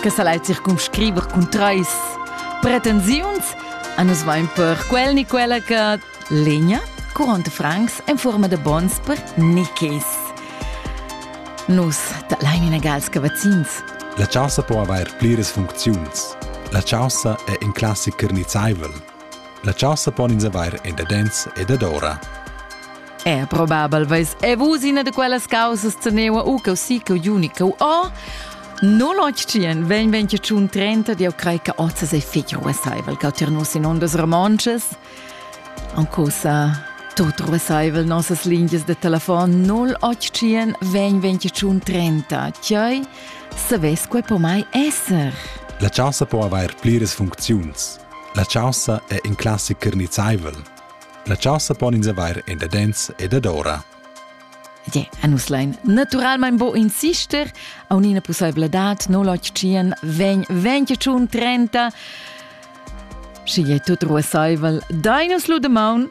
che sa lai circumscriver cun trais pretensiuns a nus vain per quel ni quella che legna 40 francs en forma de bons per nichis. Nus da lain inagals che vaccins. La chaussa po avair pliras funcziuns. La chaussa è in classic carnizzaivel, La chasa pon ins avair endadens ed adora. È probabel veis e vus ina de quellas causas teneua u cau si cau juni cau o No lotschien, ven ven che tschun trenta di au crei che ozzas e figio essaivel cau tirnus in ondas romonces. Ancusa tot ruessaivel nossas lingias de telefon 0800 ven ven che tschun trenta, chioi se ves quei po mai esser. La chasa po avair pliras funcziuns. La chaussa è in classicher nizzaivel. La chaussa pon ins avair en dadens e dadora. Ie, e nus lein naturalmein bo insister a un'ina possibilità no l'occian vegn venti tschun trenta Schi è tut ruasaivel, dai nus lu de maun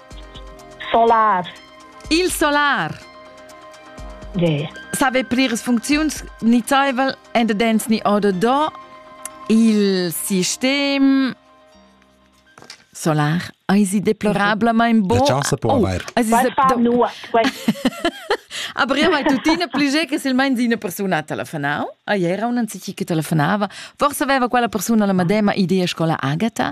Solar. Il solar. Yeah. Save pliras funcziuns nizzaivel endadens ni oder do il sistem solar eisi deplorablamain bo. La chance può oh, avair. Aber io mai tuttina pli ge che silmein di una persona telefonau. A ieri un anzichi che telefonava. Forse aveva quella persona la madema idea scola Agata.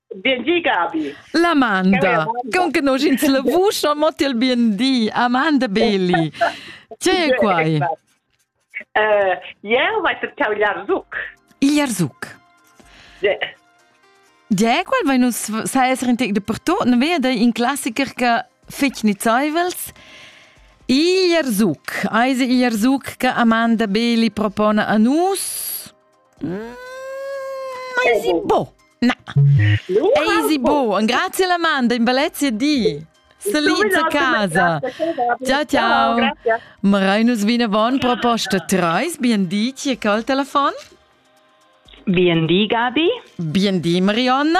Bien di, Gabi. L'Amanda, con che noi ins la vusch non mot il bien di, Amanda Beli. Tge è quai? Uh, ieu vai cercau Jarzuc. Il Jarzuc? Yeah. Tge qual vai nus sa essere in tec de pertot, non vea dai in classiker che fec nizaivels. Il Jarzuc, eise il Jarzuc che Amanda Beli propone a nus? Easy bo. Na. Easy bo. Un grazie alla manda in Valencia di. Salite a casa. Ciao ciao. Marainus vinavon proposta treis. Bien di, chi è col telefon? Bien di, Gabi. Bien di, Marionna.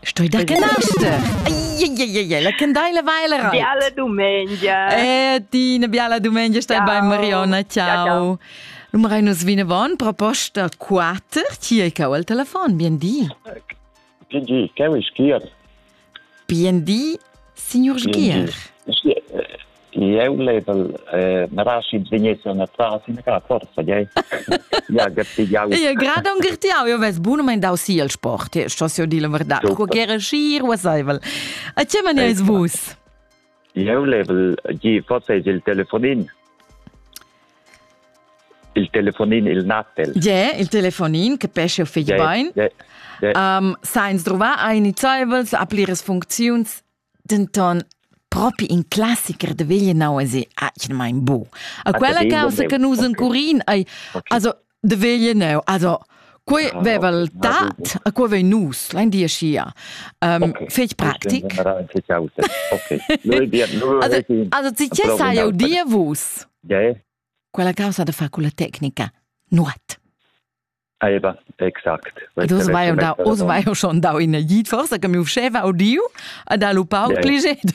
Stoi da che naster? La candeila va la rot. Biala domenica. Eh, di una biala domenica, stai bei Marionna, ciao. Nummer ein uns vinavon proposta 4, ti hai cau al telefon, bien di. Bien di, Caro Schier. Bien di, signor Schier. jeu level eh, naraschids vegnessan atras ina cara forza gei ja gartigiau ja grada un gartiau io ves bunumein dau si el sport ja stos io dir la verdad co gera schir wasaivel a che man eis vus jeu level gi forse il telefonin il telefonin il natel je il telefonin che pesce o figli bain um, sa ins drova ein nizaivels a pliras funcziuns Denton propi in classicher da veglienau es atgnamain bu. A quella caussa che nus encurin ei also de veglienau, also quei ah, veva il tat, a quei vei nus, lein dir schia. Um, fetg praktic. Also ti che sai jau dir vus? Quella causa de fa con la tecnica, nuot. Eva, exact. Ed oz vai jau dau, oz vai jau schon dau ina git, forsa che mi uscheva audiu ed ha lu pauc liget.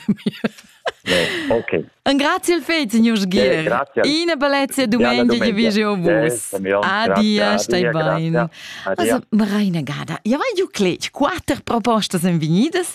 Ok. Un grazie al fet, signor Sgier. Ina bellezia domenica che vi jeu vus. Adia, stai bene. Also, Marina Gada, ja vai ju cletg, quatter propostas en venidas